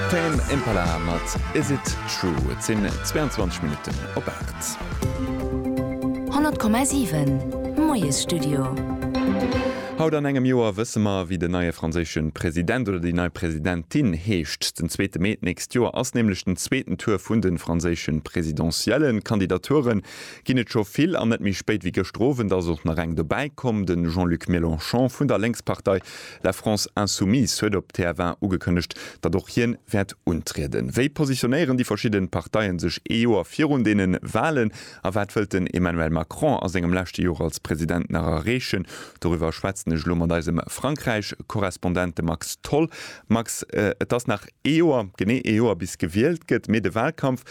Tame Impala mat Is It True. Et sinn 22 Minutten op 8. 100,7 Moiesstudio. Haut an engem Joer wësse mer, wéi den neie franséische President oder déi nei Presidentin heescht. Den zweete Mee d'nächst Joer ass nämlech den zweeten Tour vun de franséische Presidentiellen. Kandidaturen ginn et scho vill an net méi spéit wéi gëschter Owend ass och nach eng dobäi komm, de Jean-Luc Mélenchon vun der Lénkspartei. La France Insoumise huet op TF1 ugekënnegt, datt och hien wäert untrieden. Wéi positionéieren déi verschidden Parteien sech ee Joer virun deenen Wahlen? A wat wëllt den Emmanuel Macron a sengem leschte Joer als President nach erreechen? Doriwwer schwätzen ech elo mat eisem Frankräich-Korrespondent, dem Max Tholl. Max, et ass nach ee Joer, genee ee Joer bis gewielt gëtt, mee de Wahlkampf,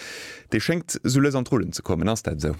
dee schéngt sou lues an d'Rullen ze kommen, ass dat esou?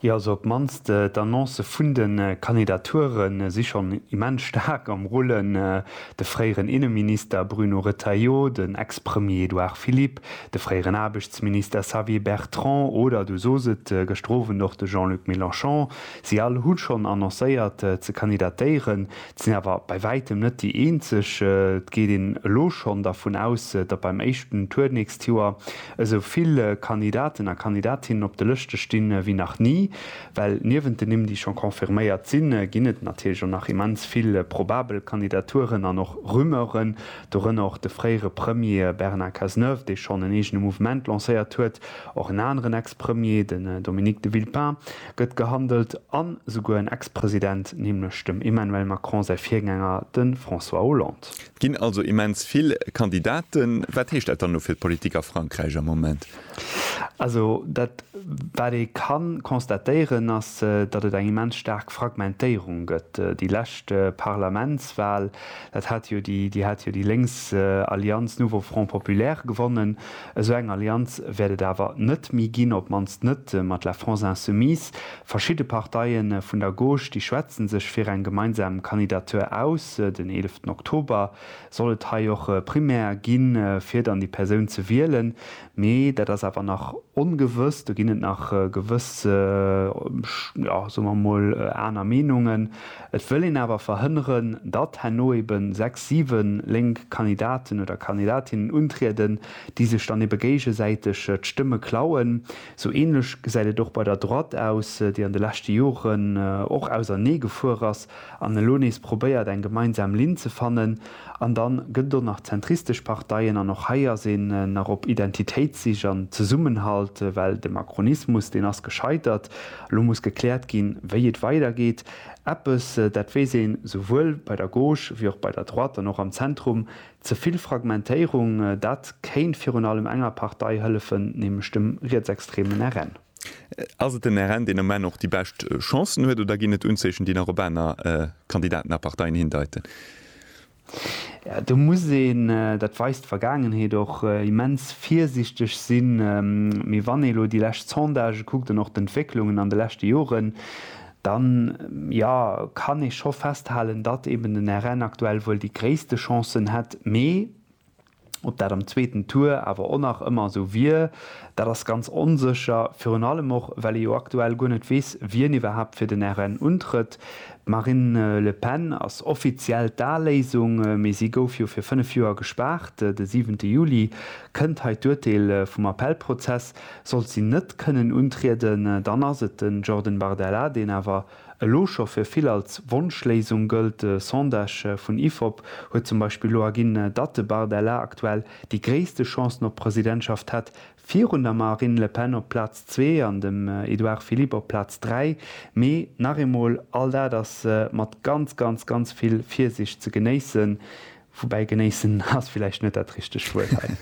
Jo, also op d'mannst d'Annoncë vun de Kandidature si schonn immens staark am Rullen, de fréieren Inneminister Bruno Retailleau, den Ex-Premier Édouard Philippe, de fréieren Aarbechtsminister Xavier Bertrand oder, du sos et, gëschter Owend och de Jean-Luc Mélenchon, si all hu schonn annoncéiert ze kandidatéieren. Et sinn awer bei wäitem net déi eenzeg. Et geet een elo schonn dervun aus, datt beim éischten Tour d'nächst Joer esou vill Kandidaten a Kandidatinnen op de Lëschte stinn ewéi nach ni. Well niewent den Nimm, déi schonn confirméiert sinn, ginn et natierlech och nach immens vill probabel Kandidaturen an och Rumeuren. Dorënner och de fréiere Premier Bernard Cazeneuve, dee schonn en eegene Mouvement lancéiert huet. Och en aneren Ex-Premier, den Dominique de Villepin. gëtt gehandelt a souguer en Ex-President, nämlech dem Emmanuel Macron säi Virgänger, de François Hollande. Et ginn also immens vill Kandidaten. Wat heescht dat dann elo fir d'Politik a Frankräich am Moment? Also dat wat ee ka constatéieren ass, datt et eng immens staark Fragmentéierung gëtt. Déi lescht Parlamentswal, dat hat jo déi hat jo déi lénks Allianz Nouveau Front Populaire gewonnen. Esou eng Allianz wäert et awer net méi ginn, op d'mannst net mat La France Insoumise. Verschidde Parteie vun der Gauche, déi schwätzen sech fir eng gemeinsam Kandidatur aus. Den eeleften Oktober soll et hei och e Primaire ginn, fir dann déi Persoun ze wielen. Mee dat ass awer nach ongewëss. Do ginn et nach gewëss, jo, soe mer emol, aner Meenungen. Et wëll een awer verhënneren, datt herno ebe sechs, siwen lénk Kandidaten oder Kandidatinnen untrieden, déi sech dann ebe géigesäiteg d'Stëmme klauen. Sou ähnlech gesäit et och bei der Droite aus, déi an de leschte Joren och ausernee gefuer ass an elo nees probéiert, eng gemeinsam Linn ze fannen. An da gëtt et och nach zentristesch Parteien. An och hei ass een nach op Identitéitssich an Zesummenhalt, well de Macronismus, deen ass gescheitert. Elo muss gekläert ginn, wéi et weidergeet. Eppes, dat weess een, souwuel bei der Gauche wéi och bei der Droite an och am Zentrum. Ze vill Fragmentéierung, dat kéint virun allem enger Partei hëllefen, nämlech dem rietsextremen RN. Ass et den RN, deen am Moment och déi bescht Chancen huet, oder ginn et Unzeechen, déi nach op aner Kandidaten a Parteien hindeiten? Do muss een, dat weist d'Vergaangenheet, och immens virsiichteg sinn. Mee wann ee elo déi lescht Sondagë kuckt an och d'Entwécklungen an de leschte Joren, da jo kann ee scho festhalen, datt eeben den RN aktuell wuel déi gréisste Chancen hätt. Mee Ob dat am zweeten Tour awer och nach ëmmer esou wier, dat ass ganz onsécher, virun allem och, well ee jo aktuell guer net weess, wien iwwerhaapt fir den RN untrëtt. D'Marine Le Pen ass offiziell d'A-Léisung, mee si gouf jo fir fënnef Joer gespaart. De siwente Juli kënnt hei d'Urteel vum Appellprozess. Sollt si net kënnen untrieden, dann ass et de Jordan Bardella, deen awer, Elo scho fir vill als Wonschléisung gëllt. E Sondage vun Ifop huet zum Beispill elo erginn, datt de Bardella aktuell déi gréisste Chancen op d'Presidentschaft hätt, virun der Marine Le Pen op Plaz zwee an dem Edouard Philippe op Plaz dräi. Mee nach eemol, all dat ass mat ganz, ganz, ganz vill Virsicht ze genéissen. Woubäi genéissen ass villäicht net dat richtegt Wuert hei.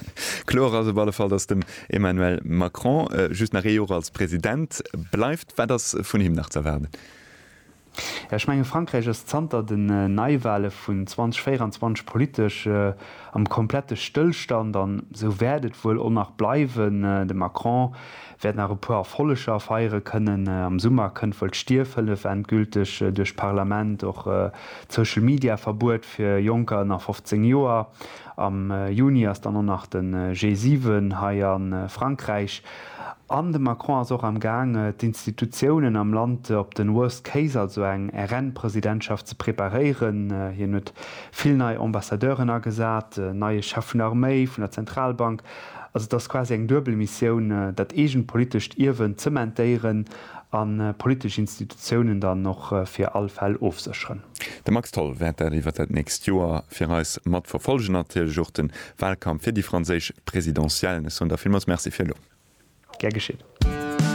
Kloer ass op alle Fall, datt den Emmanuel Macron just nach ee Joer als President bleift. Wat ass vun him nach z'erwaarden? Jo, ech mengen, Frankräich ass zanter den Neiwale vun 2024 politesch am komplette Stëllstand an esou wäert et wuel och nach bleiwen. De Macron wäert nach e puer Erfolleger feiere kënnen. Am Summer kënnt wuel d'Stierfhëllef endgülteg duerch d'Parlament, och d'Social-Media-Verbuet fir Jonker ënner 15 Joer. Am Juni ass dann och nach de G7 hei a Frankräich. An de Macron ass och am Gaang, d'Institutiounen am Land op de Worst Case, also eng RN-Presidentschaft, ze preparéieren. Hien huet vill nei Ambassadeuren agesat, neie Chef vun der Arméi, vun der Zentralbank, Also et ass quasi eng duebel Missioun, dat eegent politescht Ierwen zementéieren a politesch Institutiounen dann och fir all Fäll ofsécheren. De Max Tholl wäert dat iwwer dat nächst Joer fir eis mat verfollegen, an natierlech och de Wahlkampf fir déi franséisch Presidentielle. Ech soen da villmools Merci fir elo. Gär geschéet.